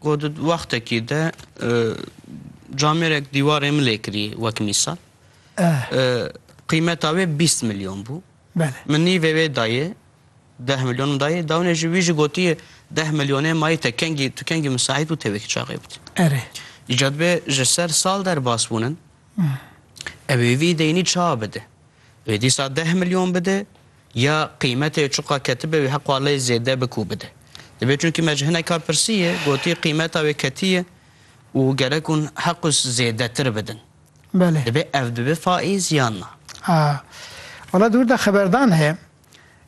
Ku di wextekî de camêrek dîwarê min lê kirî wek mîsal qîmeta wê bîst milyon bû. Min nîvê wê dayê deh milyon min dayê dawinê ji wî jî gotiye deh milyonê mayî te kengî tu kengî misaîd bû tevekî çaxê bidî. Erê. Îca dibe ji ser sal derbas bûnin. Ew ê vî deynî ça bide. Wê dîsa deh milyon bide. Ya qîmetê çiqas ketibe wî heqa lê zêde bik û bide. Divê çunkî me ji hineka pirsiye gotî qîmeta wê ketiye û gerek hûn heqûs zêdetir bidin. Belê. Divê ev bibe faîz yan na. A. Wala di wir de xeberdan heye.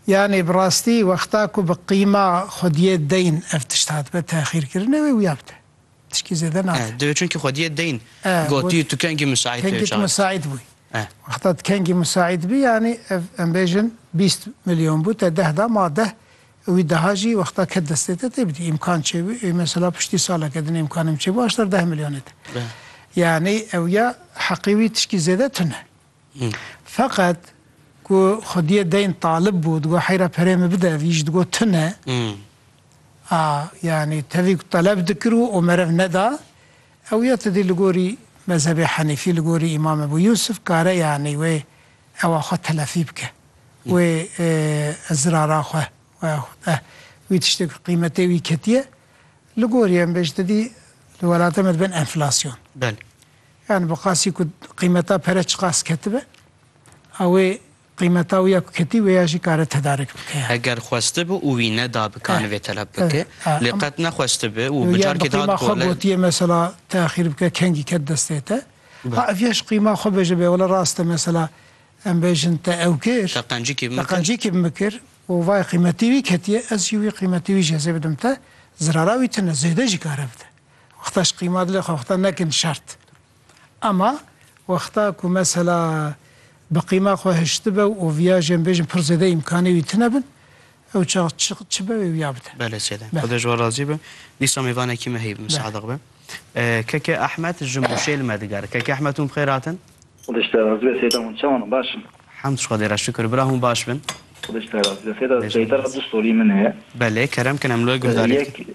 Yanî bi rastî wexta ku bi qîma xwediyê deyn ev tişt hatibe texîrkirine wê wiya bide. Tişkî zêde nabe. Eh, divê çunkî xwediyê deyn Eh, got- gotiyê tu kengî misaîd Kengî tu pêşa. misaîd bûyî. Eh. Wexta tu kengî misaîd bî yanî ev em bêjin bîst milyon bû te deh da ma deh wî deha jî wexta ket destê te tê bidî. Îmkan çêbû ê mesela piştî saleke din îmkanê min çêbû aşter deh milyonê te. Eh. Yanî ew ya heqî wî tişkî zêde tune. Feqet ku xwediyê deyn talib bû digot heyra perê min bide vî jî digot tune. Hmm. A, yanî tevî ku teleb dikir û û meriv neda, ew ya ti dî li gorî mezhebê Henîfî, li gorî Îmam Ebû Yûsif kare yanî wê ewa xwe telefî bike, wê zirara xwe we xwe wî tiştê ku qîmetê wî ketiye, li gorî em bêjin ti dî li welata me dibin enflasyon. Belê. Yanî bi qasî ku qîmeta pere çiqas ketibe, a wê Qîmeta wî ya ku ketî wê ya jî kare tedarik bike ya. Eger xwestibi û wî neda bi kanî vê teleb bike. Lê qet nexwestibi û bi carkê dihat golek. Bi qîma xwe gotiyê mesela teaxîr bike kengî ket destê te. Ha ev ya ji qîma xwe bêje bê wele rast e mesela em bêjin te ew kir. Te qencikî bimikir. Te qencikî bimikir û vay qîmetî wî ketiye ez jî wî qîmetî wî jezê bidim te. Zirara wî tune zêde jî kare bide. Wexta ji qîma dilê xwe wexta nekin şert. Ama wexta ku mesela bi qîma xwe hiştibe û oviya jê em bêjin pir zêde îmkanê wî tune bin, ew çax çi çi be wê wiya bide. Bele sêde. Xweda ji we razî be. Dîsa mêvanekî me heye bi min sadiq be. KK Ahmet ji Mûşê li me digere. KK Ahmet hûn bi xêr hatin? Xweda ji te razî be sêde hûn çawan in baş in? Hemd ji Xwedê re şikir bira hûn baş bin. Xweda ji te razî be sêde seytera du stolî min heye. Belê kerem kin em li we guhdarî dikin.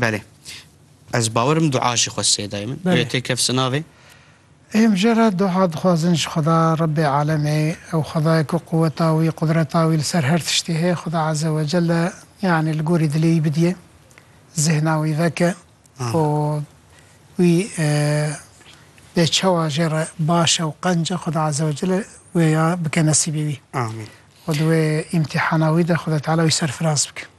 Belê. Ez bawerim dua jî xwe sê dayê min. Belê. Ew tê kevsi navê. Êm jê re dua dixwazin ji Xweda Rebbê Alemê, ew Xwedayê ku quweta wî, qudreta wî li ser her tiştî heye, Xweda Eze Wecel e, yanî li gorî dilê wî bidîye, zihna wî veke û wî bê çawa jê re baş e û qenc e, Xweda Eze Wecel e wê ya bike nesîbê wî. Amîn. Û di wê îmtîhana wî de Xweda Teala wî serfiraz bike.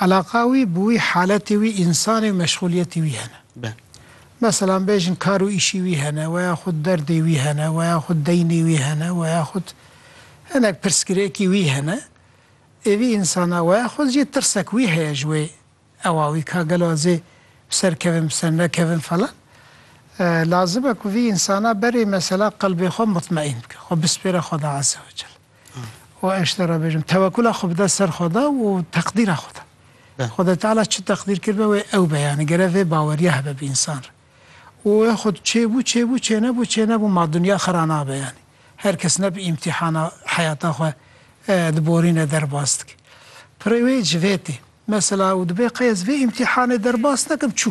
Eleqa wî bi wî haletê wî însanê û meşxûliyetê wî hene. Meselan bêjin kar û îşî wî hene weya xwed derdê wî hene weya xwed deynê wî hene weya xwed hinek pirsgirêkî wî hene. Êvî însana weya xwed jî tirsek wî heye ji wê ewa wî ka gelo ez ê bi ser kevim bi ser nekevim falan. Lazim e ku vî însana berê mesela qelbê xwe mutmeîn bike, xwe bispêre Xweda Azze wecel. Wa eş te re bêjim tewekula xwe bide ser xwe de û teqdîra xwe de. Xwedê Teala çi teqdîr kiribe wê ew be yanî gere vê baweriya hebe bi însan re. Û wê xwe çêbû çêbû çênebû çênebû ma dinya xwe ra nabe yanî. Her kes ne bi îmtîhana heyata xwe diborîne derbas dike. Pirê wê ji vê tê. Mesela û dibê qey ez vê îmtîhanê derbas nekim çû.